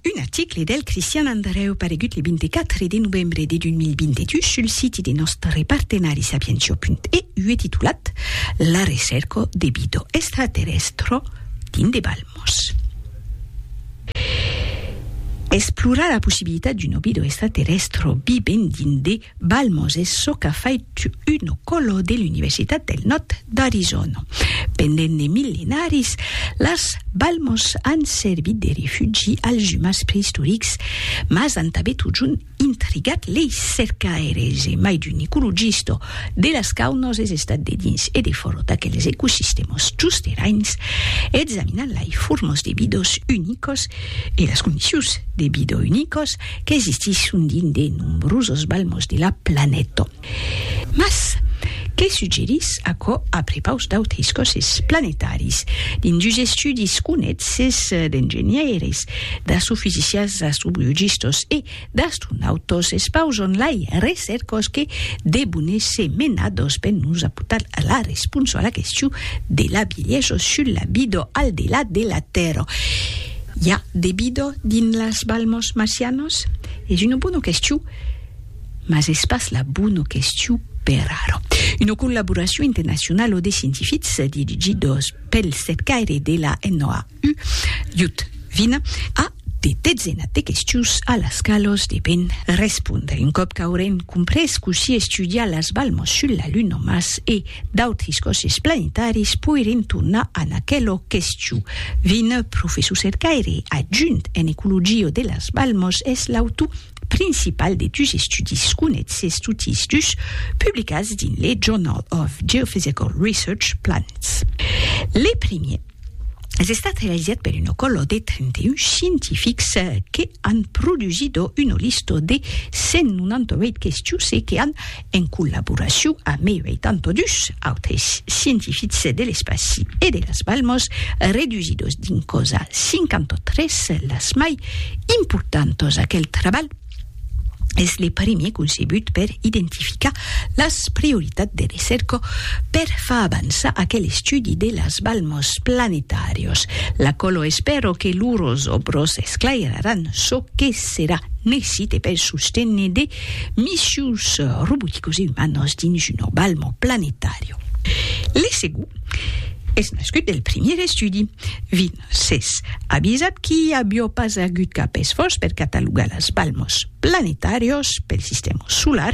Un article del Cristian Andreu paregut le 24 de novembre de 2022 sul siti de nòstre partenari sapientia.eu e titulat La recerca de vida extraterrèstra dins de balmos. Explorar la possibilitat d'una vida extraterrèstra vivent dins de. Balmos es çò qu'a fait tu Uno Colo de l'Universitat del Nòrd d'Arizona. Pendent de millenaris, las balmos an servit de refugi als umans preistorics, mas an tanben totjorn intrigat lei cercaires e mai d'un ecologista de las caunas es estat de dins e de fòra d'aqueles ecosistèmas justeràins examinant lei formas de vidas unicas e las condicions de vida unicas qu'existisson dins de nombrosos balmos de la planeta. Mas, que suggerís aquò a prepaus d'autres còsses planetaris? Dins dus estudis conètz-es d'engenhaires, d'astrofisicians, d'astrobiologistas e d'astronautas es paus en lai recèrcas que devon èsser menadas per nos aportar la responsa a la question de la bielhesa sus la vida al delà de la Tèrra. I a de bido dins las balmos marcianos? Es una bona question, mas es pas la bona question per ara. Una collaboracion internacionala de scientifics dirigidos pel cercaire de la NOAU, Jud Vine, a de dezenas de questions a las qualas deben respondre. Un còp qu'aurem comprés cossí estudiar las balmos sul la Luna, Mars e D'autres còsses planetaris poirien tornar an aquelo question. Vin, professor cercaire adjunt en ecologia de las Balmos, es l'autor principal de dus estudis conètses totis dus publicats dins le Journal of Geophysical Research, Planets. Le primièr es estat realizat per una còlo de 31 scientifics que an produsido una lista de 198 questions e que an en collaboracion amb eu e tanto dus autres scientifics de l'espaci e de las Balmos, redusidos dins cosa 53, las mai importantos. Aquel trabalh es le primier concebut per identificar las prioritats de recerca per far avançar aquel estudi de las Balmos planetàrios. L'acolo espèro que lors òbros esclairaràn çò que serà necite per sostenir de Missius roboticos e umanos dins un orbalmo planetàrio. L'ESEGU es nascut del primièr estudi. Vin s'es avisat qu'i avió pas agut cap esfòrç per catalogar las balmos planetàrios pel sistèma solar,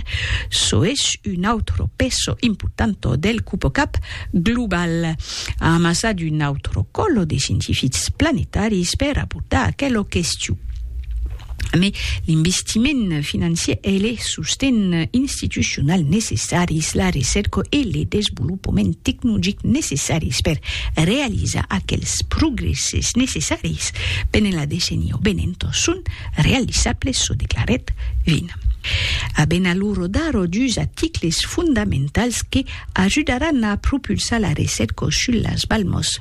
çò es un autro peso importanto del cupocap global, amassat un autro còlo de scientifics planetaris per abordar aquela question. Mai l'investiment financier e le sosten institucional necessaris, la recerca e le desvolopament tecnologic necessaris per realizar aquels progresses necessaris pene la decenia venent son realizables, çò declarèt Vin. Aben alura d'ara dus aticles fondamentals que ajudaràn a propulsar la recerca sus las balmas.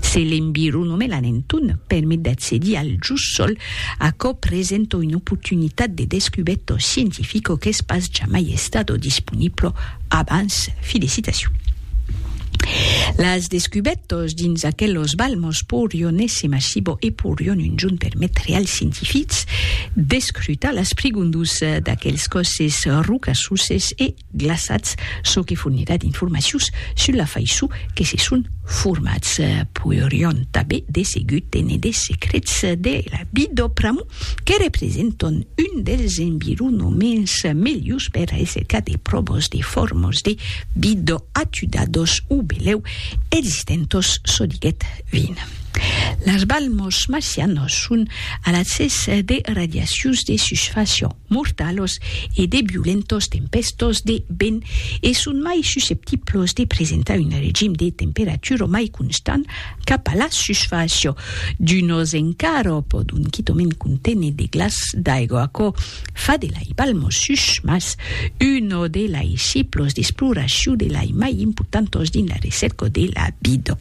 Se l'embiru non me la nenton, permet d'accedir al just sol, aquò presento un oportunitat de descubeto scientifico qu'es pas jamai estato disponiblo abans. Filicitacion. Las descubetos dins aquelos balmos porion ésser massibo e porion un junt permetre als scientifics d'escrutar las prigondus d'aquels còsses rocassoses e glaçats, çò que fornirà d'informacions sus la faiço que se son formats. Poirion tanben de segur tene de secrets de la vie dau pramo que representon un dels environoments melhors per a èsser cas de pròbos de formos de vida atudados o belèu existentos, çò diguèt Vin. Las balmos marcianos son alatzes de radiacions de susfàcia. mortalos e de violentos tempèstos de vent e son mai susceptiblos de presentar un regim de temperatura mai constant cap a la susfàcia d'unos encara o pòdon quitament conténer de glaç d'aigua. Aquò fa de lai Balmosus mas uno de lai ciclos d'exploracion de lai mai importantos dins la recèrca de la vida.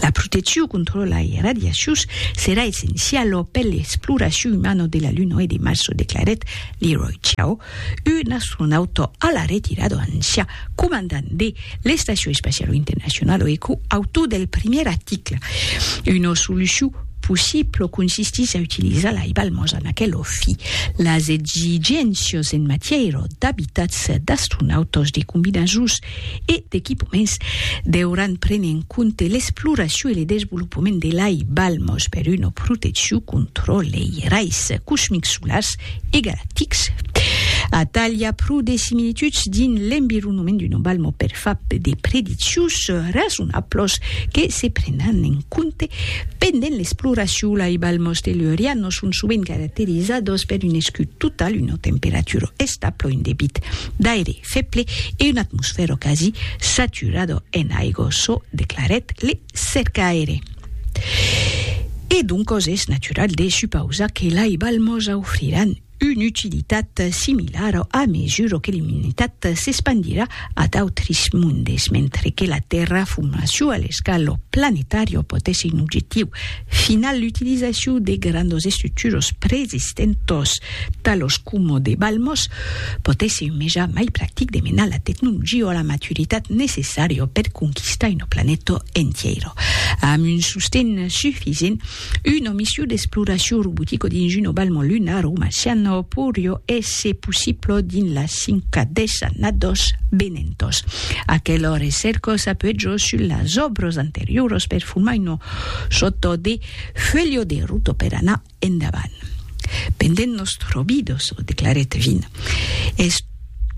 La proteccion contra lai radiacions serà essenciala per l'exploracion umana de la Luna e de Mars, o declarèt Leroy Chiao, un astronauta a la retirada ancian comandant de l'Estacion Espaciala Internacionala e co-autor del primièr article. Una solucion possibla consistís a utilizar lai balmas en aquela fi. Las exigéncias en matièra d'abitats d'astronautas de combinaisons e d'equipaments deuràn prene en compte l'exploracion e le desvolopament de lai balmos per una proteccion contra lei rais cosmics solars e galactics. Atalha pro de similituds dins l'environament d'una balmo per far de prediccions rasonablos que se prenan en compte pendent l'exploracion. Lai balmos tellurianos son sovent caracterizados per un escut total, una temperatura establa, un debit d'aire feble e un atmosfèro quasi saturado en aigo, çò declarèt le cercaire. E doncos es natural de supausar que lai balmos aufriràn una utilitat similara a mesura que l'umanitat s'espandirà a d'autres mondes, mentre que la terraformacion a l'escala planetària pòt èsser un objectiu final, l'utilizacion de grandos estructuras preexistentas Talos coma de Balmos, pòt èsser un meja mai practic de menar la tecnologia a la maturitat necessària per conquistar una planeta entièra. Amb un sosten sufisent, una mission d'exploracion robotica dins una balma lunara o marciana poiriá èsser possibla dins las cinca desannadas venentas. Aquela recèrca s'apuèja sus las òbras anterioras per formar una sòrta de fuelha de ruta per anar Endavant. Pendent nòstro bidoso, declarèt Vin, es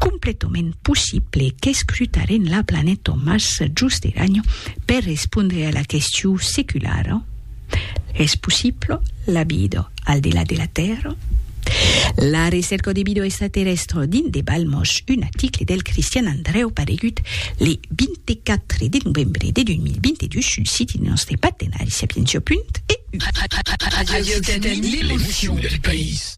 completament possible qu'escrutarem la planeta Mars just eranyo per respondre a la question seculara, Es possible la vida al delà de la Tèrra? La recerca de vida extraterrèstra dins De Balmos, un article del Cristian Andrèu paregut le 20 de 4 de novembre de 2022 sul siti de nòstre partenari Sapientia. E. Radiocatalunya, l'emocion del país.